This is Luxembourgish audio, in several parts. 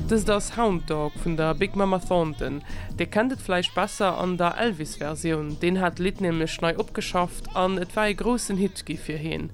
Dëst ass Hound Dog vun der Big Mama Thornton. Dir kennt et vläicht besser an der Elvis-Versioun, deen hat d'Lidd nämlech nei opgeschafft an et war ee groussen Hit gi fir heen.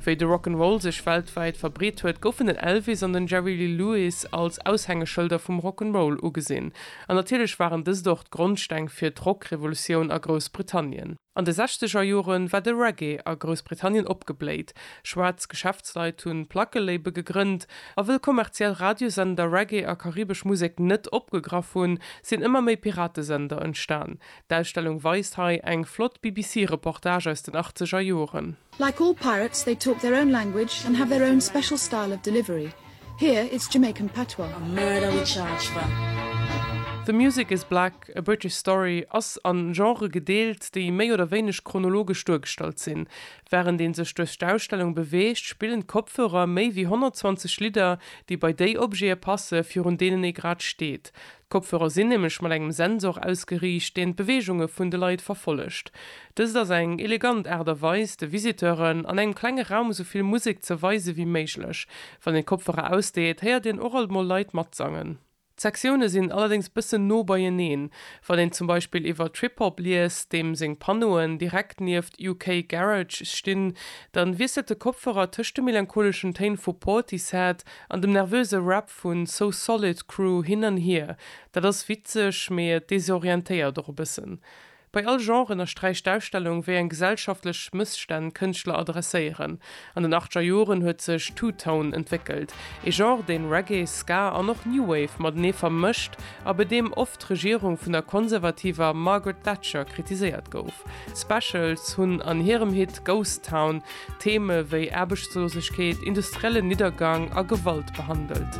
Wéi de Rock 'n' Roll sech weltwäit verbreet huet, goufen den Elvis an den Jerry Lee Lewis als Aushängeschëlder vum Rock 'n' Roll ugesinn. An natierlech waren dëst och d'Grondsteng fir d'Rock-Revolutioun a Groussbritannien. An de sechzeger Jore war de Reggae a Groussbritannien opgebléit. Schwaarz Geschäftsleit hu Plackelabel gegrënnt. A wëll kommerziell Radiosender Reggae a karibesch Musek net opgegraff hunn, sinn ëmmer méi Piratesender entstan. D'Ausstellung weist hei eng flott BBC-Reportage aus den achtzeger Joren. Like all pirates they talk their own language and have their own special style of delivery. Here it's Jamaican patois. A murder we charge for. The Music Is Black, A British Story ass a Genrë gedeelt, déi méi oder wéineg chronologesch duergestallt sinn. Wärend ee sech duerch d'Ausstellung beweegt, spillen d'Kopfhörer méi wéi 120 Lidder, déi bei déi Objete passen, virun deenen ee grad steet. D'Kopfhörer sinn nämlech mat engem Sensor ausgeriicht, deen d'Beweegunge vun de Leit verfollegt. Dëst ass eng elegant Aart a Weis, de Visiteuren an engem klenge Raum esou vill Musek ze weise wéi méiglech. Wann een d'Kopfhörer ausdeet, héiert een och alt mol Leit matsangen. D'Sektioune sinn allerdéngs bëssen no beieneen. Wann een zum Beispill iwwer Trip-Hop liest, deem seng Panneauen direkt nieft UK Garage stinn, dann wiesselt de Kopfhörer tëscht de melancholeschen Téin vu Portishead an dem nervöse Rap Vu So Solid Crew hin an hier, dat ass witzeg, mee et desorientéiert och e bëssen. Bei all Genre ënnersträicht d'Ausstellung, wéi eng gesellschaftlech Mësstänn d'Kënschtler adresséieren. An den achtger Joren huet sech Two Tone entwéckelt, ee Genre, deen Reggae, Ska an och New Wave matenee vermëscht a bei deem oft d'Regierung vun der konservativer Margaret Thatcher kritiséiert gouf. D'Specials hunn an hirem Hit Ghost Town Theme wéi Aarbechtslosegkeet, industriellen Niddergang a Gewalt behandelt.